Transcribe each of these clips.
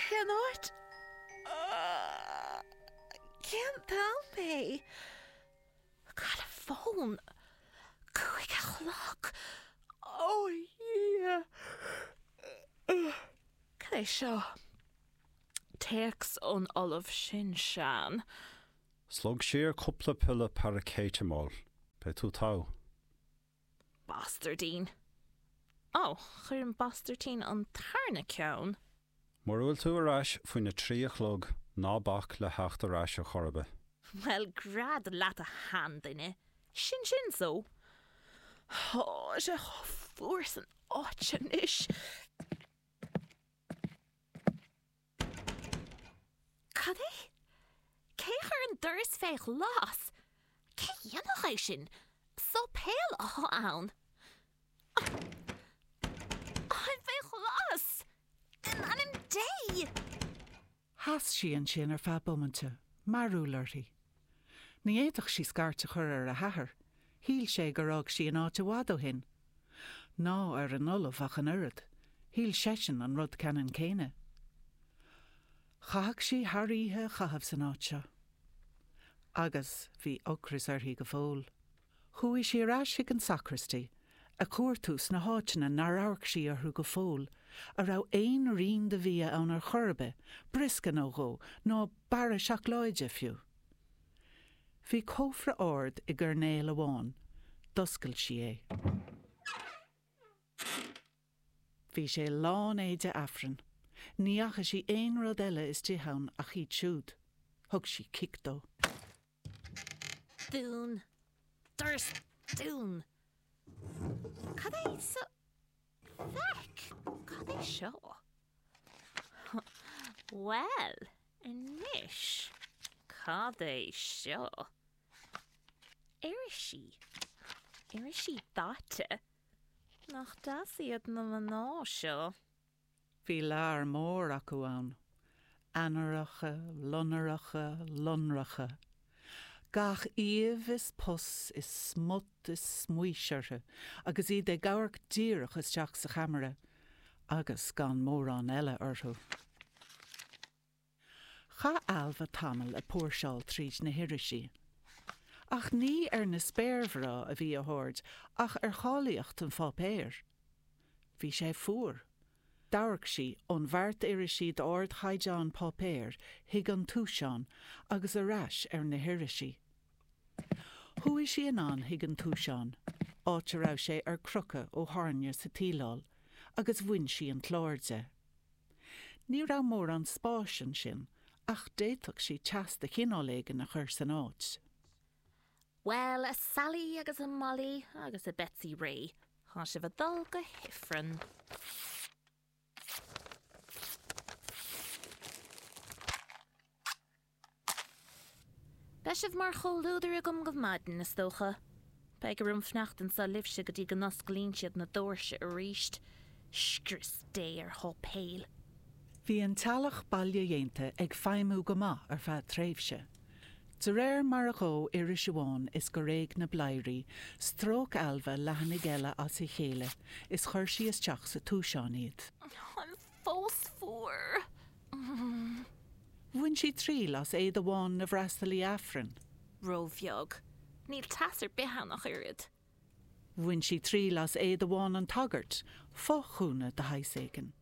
Cén áit? Cén t-am é? Cá bhfuil an fón? Cúig a chlog? Ó Dhia! Cad é seo? Téacs ón Ollamh Sin-Sean. Slog siar cúpla piolla paracetamol. Beidh tú togha. Bastairdín. Ó, chuir an bastairdín an tarna ceann. Mura bhfuil tú ar ais faoin a trí a chlog, ná bac le theacht ar ais, a Chorbett. Bhuel, gread leat a sheanduine, sin sin so. Tá sé chomh fuar san áit anois. Cad é? Cé a chuir an doras fé ghlas? Cé a dhéanfadh é sin? Sáipéal athá ann. Táim fé ghlas! In ainm Dé! Sheas sí ansin ar feadh bomaite, mearbhall uirthi. Ní fhéadfadh sí scairt a chur ar a hathair, shíl sé gur fhág sí an áit i bhfad ó shin. Ná ar an ollamh ach an oiread, shíl seisean an rud ceannann céanna. Chaithfeadh sí thar oíche a chaitheamh san áit seo. Agus bhí ocras uirthi go fóill. Chuaigh sí ar ais chuig an sacraistí a chuartú sna háiteanna nár amharc sí orthu go fóill, an raibh aon rian de bhia ann ar chor ar bith, briosca nó dhó, ná barra seacláide fiú. Bhí cófra ard i gcoirnéal amháin. D'oscail sí é. Bhí sé lán éide Aifrinn. Ní fhaca sí aon rud eile istigh ann ach iad siúd. Thug sí cic dó. Dún. Doras dún. Cad é sa feic! Cad é seo? Bhuel, anois, cad é seo? Irisí. Irisí daite. Nach deas iad na mná seo? Bhí lear mór acu ann, ainnireacha loinnireacha lonracha, gach aoibh is pus is smut is smaois orthu agus iad ag amharc díreach isteach sa cheamara agus gan mórán eile orthu. Chaith Ailbhe tamall ag póirseáil tríd na hirisí. Ach ní ar na spéirmhná a bhí a haird ach ar cháilíocht an pháipéir. Bhí sé fuar. D'amharc sí ón bheart irisí d'ardchaighdeán páipéir chuig an túiseán agus ar ais ar na hirisí. Chuaigh sí anonn chuig an túiseán, áit a raibh sé ar crochadh ó thairne sa tsíleáil, agus bhain sí an clár de. Ní raibh mórán spáis ansin, ach d'fhéadfadh sí teas de chineál éigin a chur san áit. Bhuel, a Sally agus a Molly agus a Betsy Rae, tá sibh a dul go hIfreann. Beidh sibh mar chomhluadar agam go maidin, is dócha. Beidh orm fanacht anseo libhse go dtí go n-osclaíonn siad na dóirse arís. Scrios Dé ar sháipéil! Bhí an teallach bailedhéanta ag feidhmiú go maith ar feadh tréimhse. De réir mar a dhó iris amháin is gur éag na bladhairí, stróic Ailbhe leathanaigh eile as a chéile is chuir sí isteach sa túiseán iad. An fós fuar. Bhain sí triail as éide bhán na bhfreastalaí Aifrinn. ró-bheag. Níl teas ar bith ann ach oiread. Bhain sí triail as éide bhán an tsagairt, fo-ghúna de shaghas éigin.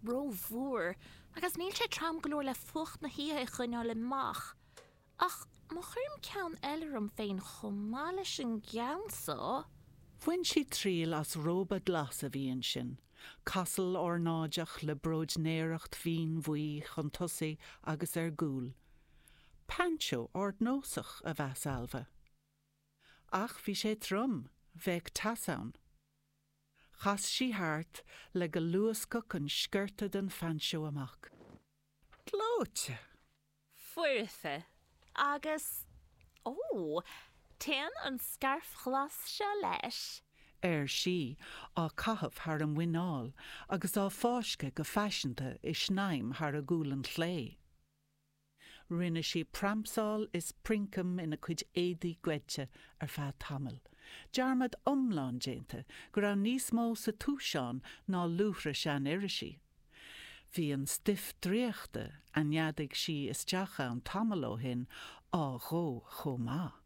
ró-mhór, agus níl sé trom go leor le fuacht na hoíche a choinneáil amach. Ach má chuirim ceann eile orm féin chomh maith leis an gceann so. Bhain sí triail as róba glas a bhí ansin, casal ornáideach le bróidnéireacht mhín bhuí chun tosaigh agus ar gcúl. Painseó ardnósach, a mheas Ailbhe. Ach bhí sé trom, bheadh teas ann. Chas sí thart le go luascfadh an sciorta den phainseó amach. Gleoite! foirfe agus, ó, téann an scairf ghlas seo leis. ar sí, á caitheamh thar a muineál agus á fáisceadh go faiseanta i snaidhm thar a gualainn chlé. Rinne sí pramsáil is princeam ina cuid éadaí goidte ar feadh tamaill, dearmad iomlán déanta go raibh níos mó sa túiseán ná luaithre sean-irisí. Bhí an stuif draíochta a neadaigh sí isteach ann tamall ó shin á dhó chomh maith.